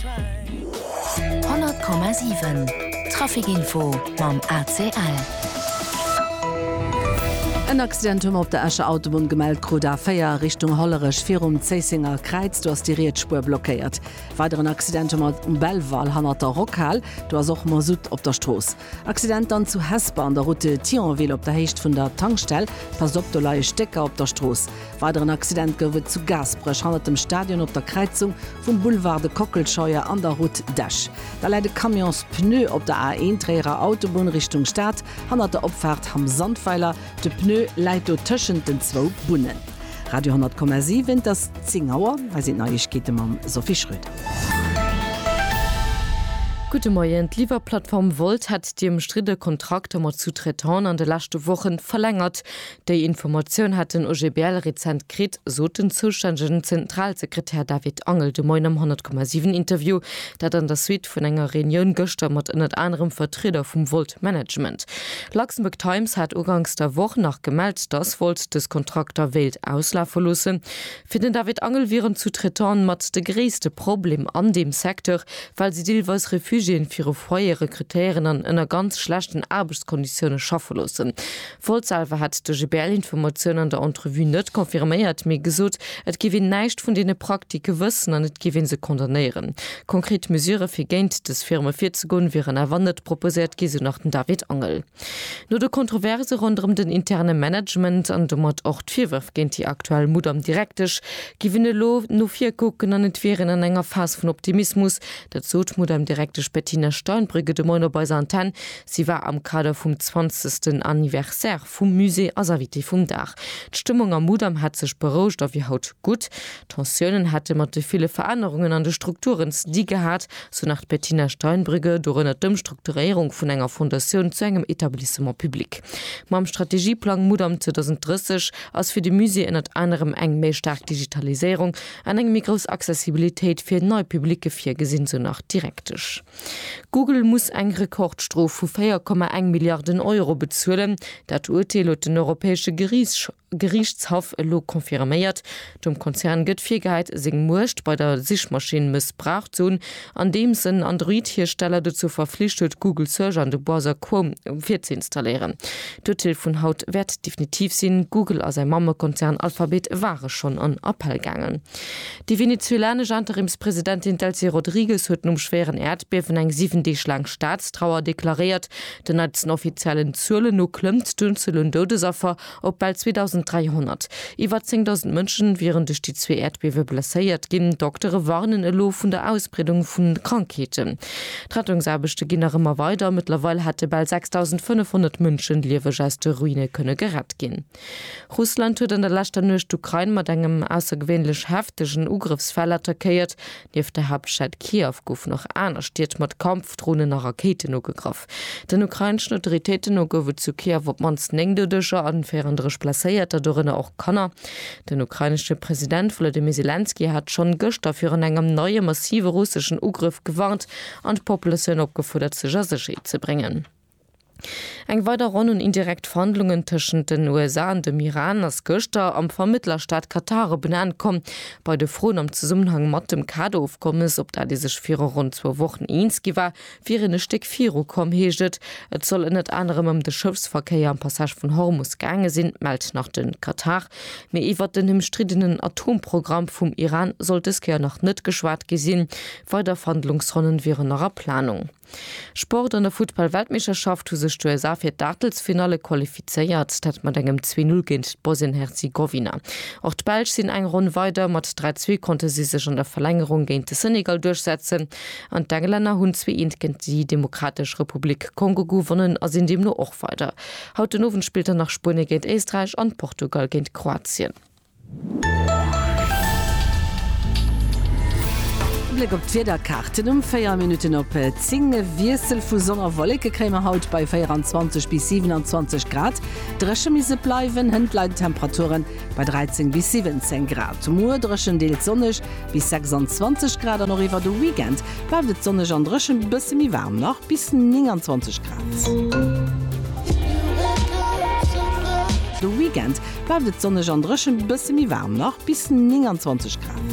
100,7 Trafic Info mam ACL. En Accident hu mer op der Escher Autobunn gemellt krut, A4 Richtung Hollerech virum Zéissenger Kräiz. Do ass déi riets Spuer blockéiert. Weideren Accident hu mer um Belval hannert der Rockhal. Do ass och Masutt op der Strooss. Accident dann zu Hesper an der Route Thionville op der Héicht vun der Tankstell. Passt op, do leie Stécker op der Strooss. Weideren Accident gouf et zu Gaasperech hannert dem Stadion op der Kräizung vum Boulevard de Kockelscheuer an der Route d'Esch. Da läit e Camions Pneu op der A1 Tréierer Autobunn Richtung Stad hannert der Opfaart Hamm Sandweiler. De Pneu läit do tëschent den zwou Bunnen. Radio 10,7, et ass 10 Auer. Hei sinn d'Neiegkeete mam Sophie Schröder. Gudde Moien, D'Liwwerplattform Wolt hätt déi ëmstridde Kontrakter mat Sous-Traitanten an de leschte Wochen verlängert. Déi Informatioun hat den OGBL rezent kritt, sot den zoustännegen Zentralsekretär David Angel de Moien am 100,7 Interview. Dat an der Suite vun enger Reunioun gëschter mat ënnert anerem Vertrieder vum Volt Management. Luxembourg Times hat uganks der Woch nach gemellt, datt Volt dës Kontrakter wéilt auslafe loossen. Fir den David Angel wieren d'Sous-traitante mat de gréisste Problem an deem Secteur, well si deelweis Refugiéen viru Foyere rekrutéieren an ënner ganz schlechten Aarbechtskonditioune schaffe loossen. Woltz selwer hätt de GBL-Informatioun an der Entrevue net confirméiert, mee gesot, et géif een näischt vun deene Praktike wëssen an et géif ee se condamnéieren. Konkret Mesure fir géint dës Firme virzegoen, wieren awer net proposéiert gi, sou nach den David Angel. No de Kontroverse ronderëm den interne Management an domat och d'Virwërf géint déi aktuell Mudam-Direktesch géif een elo no vir kucken an et wier een an enger Phas vun Optimismus. Dat sot d'Mudam-Direktesch Bettina Steinbrügge de Moien op eiser Antenn. Si war am Kader vum zwanzegsten Anniversaire vum Musée als Invitée vum Dag. D'Stëmmung am Mudam hätt sech berouegt a wier haut gutt. Tensiounen hätte mat de ville Verännerungen an de Strukturen ze di gehat, sou nach d'Bettina Steinbrügge, dorënner d'Ëmstrukturéierung vun enger Fondatioun zu engem Etablissement public. Mam Strategieplang Mudam 2030 ass fir de Musée ënnert anerem eng méi staark Digitaliséierung an eng méi grouss Accessibilitéit fir nei Publicë virgesinn, sou nach d'Direktesch. Google muss eng Rekordstrof vu 4,1 Milliarden Euro bezuelen. Dat Urteel huet den europäesche Geriichtshaff elo confirméiert. Dem Konzern gëtt virgehäit, seng Muecht bei der Sichmaschinn mëssbraucht ze hunn, andeems en Android-Hiersteller dozou verflicht huet, Google Search an de Browser Chrome virzuinstalléieren. D'Urteel vun haut wäert definitiv sinn. Google a säi Mammekonzern Alphabet ware schonn an Appell gaangen. Déi venezuelanesch Interimspresidentin Delcy Rodrigues huet nom schwéieren Äerdbiewen eng 7 Deeg laang Staatstrauer deklaréiert. Den neitsten offiziellen Zuelen no klëmmt d'Unzuel un Doudesaffer op bal 2.300. Iwwer 10.000 Mënsche wieren duerch déi zwee Äerdbiewe blesséiert ginn. Doktere warnen elo vun der Ausbreedung vu Krankheeten. D'Rettungsaarbechte ginn nach ëmmer weider. Mëttlerweil hätte bal 6.500 Mënschen lieweg aus de Ruine kënne gerett ginn. Russland huet an der leschter Nuecht d'Ukrain mat engem aussergewéinlech heftegen Ugrëffsfäll attackéiert. Nieft der Haaptstad Kiew goufen och aner Stied mat Kampfdronen a Rakéiten ugegraff. Den ukraineschen Autoritéiten no gouf et zu Kiew op d'mannst 9 Doudeger an 34 Blesséierter, dorënner och Kanner. Den ukrainesche President Wolodymyr Selenskyj hat schonn gëschter virun engem neie massive russeschen Ugrëff gewarnt an d'Populatioun opgefuerdert sech a Sécherheet ze bréngen. Eng weider Ronn un indirekt Verhandlungen tëschent den USA an dem Iran ass gëschter am Vermëttlerstaat Katar op en Enn komm. Bei de Froen am Zesummenhang mat dem Kader-Ofkommes, op dat ee sech viru ronn zwou Wochen eens gi war, wier een e Stéck viru komm, heescht et. Et soll ënnert anerem ëm de Schëffsverkéier am Passage vun Hormus gaange sinn, mellt nach de Katar. Mee iwwert den ëmstriddenen Atomprogramm vum Iran soll dës Kéier nach net geschwat gi sinn. Weider Verhandlungsronnen wieren nach a Planung. Sport, An der Futtball-Weltmeeschterschaft hu sech d'USA fir d'Aachtelsfinalle qualifizéiert, dat mat engem 'Zwee Null' géint d'Bosnien-Herzegowina. Och d'Belsch sinn eng Ronn weider, mat 3 Zwee konnte si sech an der Verlängerung géint de Senegal duerchsetzen an d'Englänner hunn zwee Eent géint déi Demokratesch Republik Kongo gewonnen a sinn deemno och weider. Haut den Owend spillt dann nach Spuenie géint Éisträich an Portugal géint Kroatien. Bléck op d'Wiederkaarten um 4 Minutten op 10, E Wiessel vu Sonn a Wolleke kréie mer haut bei 24 bis 27 Grad. Dréche misst et bleiwen, hënt leien d'Temperaturen bei 13 bis 17 Grad. Muer dréchen, deels sonneg bis 26 Grad an och iwwer de Weekend bleift et sonneg an dréchen, bësse méi waarm nach bis 29 Grad. De Weekend bleift et sonneg an dréchen, bësse méi waarm nach, bis 29 Grad.